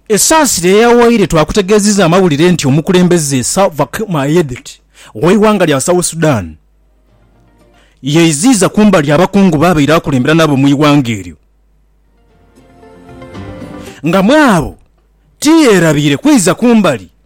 Esaasira eyawaire twakutegeezizza amawulire nti omukulembeze Salva Kiir Mayardit ow'eighanga lya South Sudan yeiziiza kumbali abakungu b'abaire akulembera nabo mu ighanga eryo nga mw'abo tiyerabiire kwiza kumbali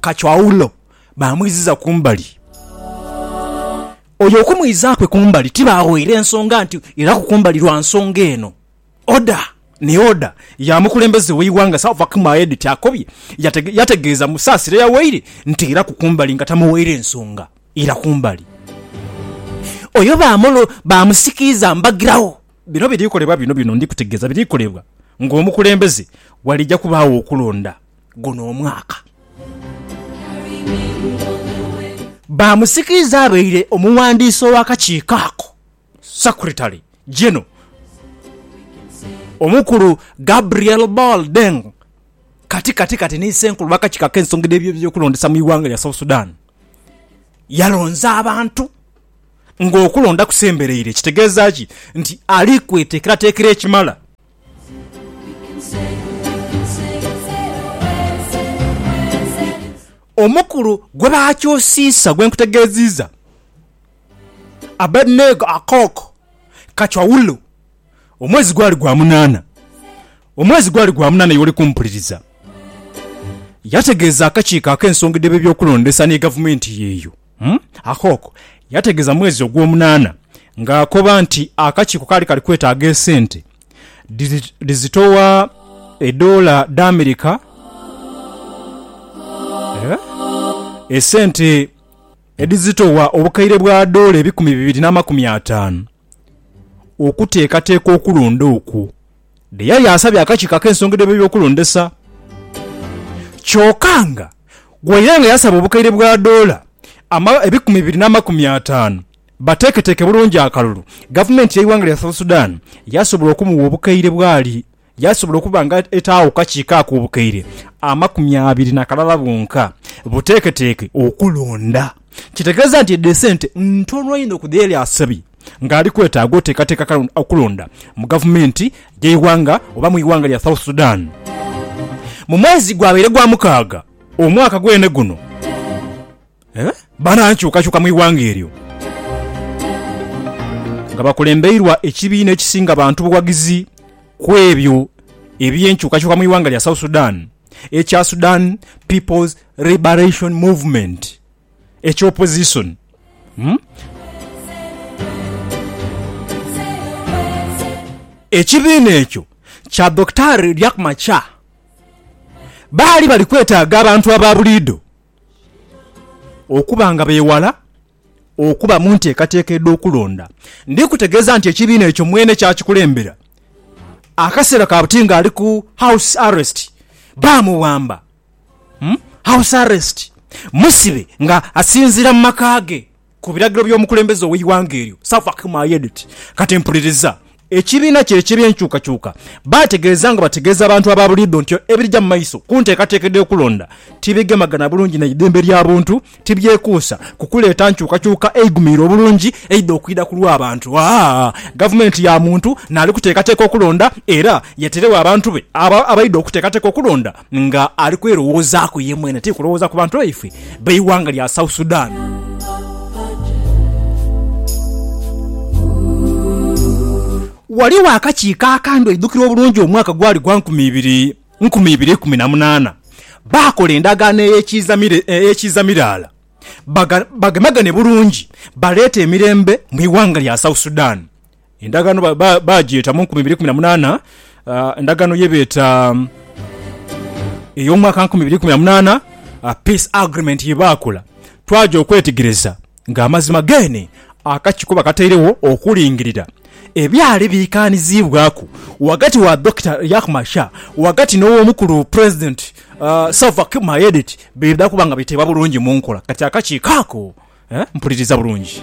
Kacho aghulo baamwiziza kumbali. Oyo okumwiza kwe kumbali tibaaghoire nsonga nti iraku kumbali lwa nsonga eno. Oda ni oda ya mukulembeze w'eighanga Salva-Kiir Mayardit akobye yategeeza Musaasira yawaire nti iraku kumbali nga tamuwaire nsonga ira kumbali. Oyo baamusikiiza mbagiragho. Bino biri kolebwa bino bino ndi kutegeeza biri kolebwa ng'omukulembeze walija kubaagho okulonda. guno omwaka. Bamusikiriza abaire omuwandiisi ow'akakiiko ako, Secretary General, Omukulu Gabriel Ball Deng kati kati kati ni Ssenkulu w'akakiiko ak'ensonga dh'ebyokulondesa mu ighanga lya South Sudan yalonze abantu ng'okulonda kusembereire kitegeeza ki nti ali kweteekerateekera ekimala. Omukulu gwe baakyusiisa gwe nkutegeeziiza, Abeduneego Akok Kachwaulu, omwezi gwali gwa munaana. Omwezi gwali gwa munaana y'oli kumpuliriza. Yategeeza akakiiko ak'ensonga edh'ebyokulondesa ni gavumenti y'eyo. Umm Akok yategeeza mwezi ogwomunaana ng'akoba nti akakiiko kaali kali kwetaaga esente dhizitowa edoola dh'Amerika esente edhizitowa obukaire bwa doola ebikumi bibiri n'amakumi ataanu okuteekateeka okulonda okwo Dheyali asabye akakiiko ak'ensonga dh'ebyokulondesa kyoka nga waire nga yasaba obukaire bwa doola ebikumi bibiri n'amakumi ataanu bateeketeeke bulungi akalulu, gavumenti y'eighanga lya South Sudan yasobola okumugha obukaire bwali yasobola okuba nga etaagho ku kakiiko ako obukaire amakumi abiri na kalala bwonka buteeketeeke okulonda. Kitegeeza nti edho esente ntono inho ku dheyali asabye nga ali kwetaaga oteekateeka okulonda mu gavumenti y'eighanga oba mu ighanga lya South Sudan mu mwezi gwabaire gwa mukaaga omwaka gwene guno banankyukakyuka mu ighanga eryo nga bakulembeirwa ekibiina ekisinga bantu bughagizi kwebyo eby'enkyukakyuka mu ighanga lya South Sudan. ekya Sudan People's Liberation Movement ekya opozisoni. Ekibiina ekyo kya Dhokitaari Riek Machar baali bali kwetaaga abantu aba buliidho okuba nga beewala. Okuba mu nteekateeka edh'okulonda. Ndi kutegeeza nti ekibiina ekyo mwene kyakikulembera. Akaseera ka buti ng'ali ku house arrest, baamuwamba. House arrest, musibe nga asinziira mu maka ge ku biragiro by'omukulembeze ow'eighanga eryo, Salva Kiir Mayedit. Kati mpuliriza, Ekibiina kye eky'ebyenkyukakyuka baategeeza nga bategeeza abantu aba buliidho nti ebirija mu maiso ku nteekateeka edh'okulonda tibigemagana bulungi na idembe lya buntu, tibyekuusa ku kuleeta nkyukakyuka eigumiire obulungi eidha okwidha ku lw'abantu. Gavumenti ya muntu naali kuteekateeka okulonda era yeterewo abantu be abo abaidha okuteekateeka okulonda. nga ali kwerowoozaku ye mwene tiri kulowooza ku bantu baifwe b'eighanga lya South Sudan. Ghaligho akakiiko akandhi oidhukira obulungi omwaka gwali gwa nkumi ibiri nkumi ibiri ikumi na munaana baakola endagaano ey'ekiiza miraala bagemagane bulungi baleete emirembe mu ighanga lya South Sudan. Endagaano baagyeta mu nkumi ibiri ikumi na munaana, endagaano ye beeta ey'omwaka nkumi ibiri ikumi na munaana, Peace Agreement ye baakola. Twagya okwetegereza ng'amazima geene akakiiko kwe bakatairegho okulingirira ebyali biikaaniziibwaku ghagati wa Dokita Riek Machar ghagati n'Ow'omukulu Pulezidenti Salva Kiir Mayardit bidha kuba nga biteebwa bulungi mu nkola. Kati akakiiko ako mpuliriza bulungi.